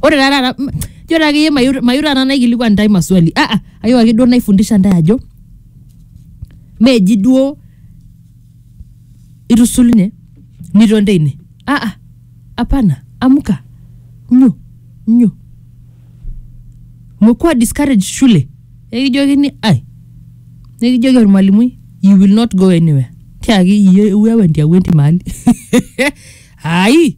ore taa taata m- ijo taa akeyie mayu mayu taata naikilikuan intae maswali ah, ah, ayieu ake duo naifundisha intae ajo meji duo itusulunye niton teine ah, ah, apana amuka nyo nyo mekuwa discourage shule ekijokini ai nikijoki ormalimui you will not go anywhere tiaki iye iwewe ntiawenti mahali ai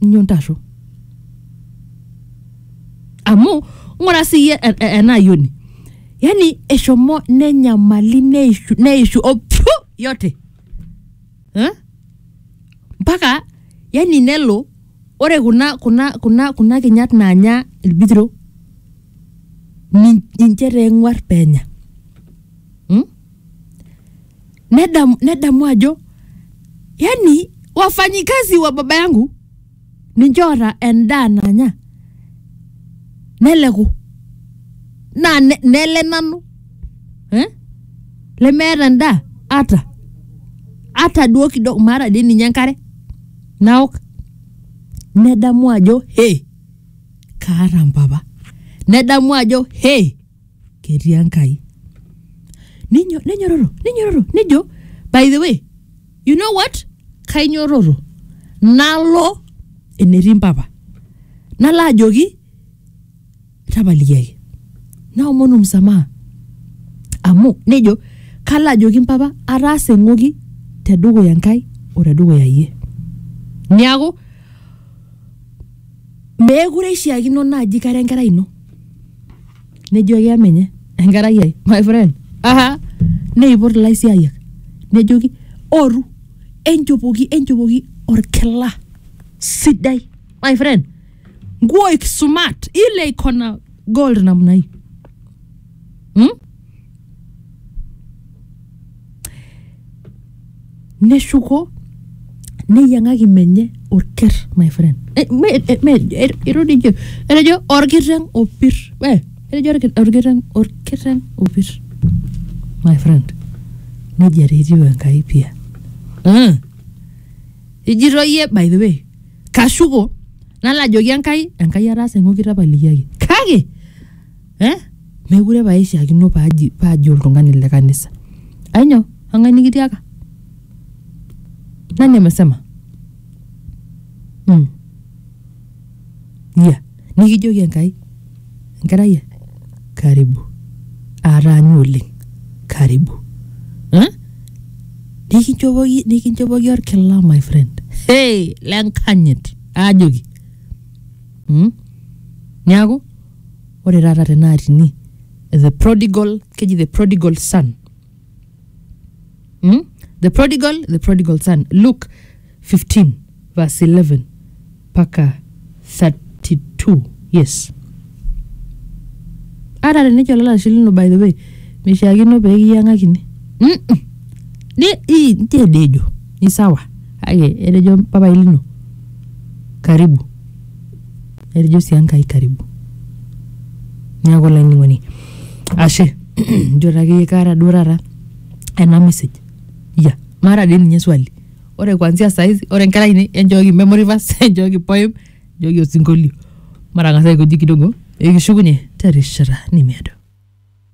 inyoo ntarru amu ng'ura siyie e- e- ena ayioni yani eshomo nenyamali neishu, neishu opyu yote eh? mpaka yani nelo ore kuna kuna kuna kuna kinyat naanya ilbitiro nin- ninche taa eng'uar penya nedamu, nedamu ajo yani wafanyikazi wa baba yangu ninche oota endaa nanya neleku naa ne- nele nanu eh? lemeeta endaa ata ata duo kidogo maata dii ninye enkare naok nedamu ajo he kaata mpapa nedamu ajo he ketii enkai Ninyo- nenyororo nenyororo nejo by the way you know what kainyororo nalo enetii mpapa nalo ajoki tapalikiaki naomonu msamaha amu nejo kalo ajoki mpapa ataasa eng'oki tedukuya enkai o tedukuya iyie niaku meekure ishiakino naaji kara enkerai ino nejoki amenye enkerai ai my friend aha neipot ilaisiayiak nejoki oru enchopoki enchopoki orkila sidai my friend nguo ikisumat ile iko na gold namna hii hmm? neshuko neyiang'aki menye orker my friend Eh, me- eh, me- eh, etejo etejo orkiteng opir Eh, etejo orki- orkiteng orkiteng opir my friend nejia taa etiu enkai pia Mm. ijito iyie by the way kashuko nalo ajoki enkai enkai ataasa eng'oki tapalikiaki kake eh? mekure pae ishiakino paaji paaji oltung'ani le kanisa ainyo ang'ae nikitiaka nani amesema mm. ya nikijoki enkai enkerai ai, karibu aataanyu oleng karibu eh? nikinchopoki nikinchopoki orkila my friend hey, lenkanyit aajoki mm? niaku ore taata tenaa tini the prodigal keji the prodigal son mm? the prodigal the prodigal son luke 15 verse 11 mpaka 32 yes ata tenejo olalashe lino by the way mishiakino pee kiyang'akini Mm-mm. Ni- i- nche dejo ni sawa kake etejo papai lino karibu Erijo sii Enkai karibu. Neeku olainining'oni ashe njo taa akeyie kaata duo taata ena message. Ya, maata dii ninye swali. Ore kuanzia saa hizi, ore nkera ainei enchooki memory verse, enchooki poem, enchooki osinkolio. Matang'asa aikoji kidogo pee kishukunye terishata nemeedo.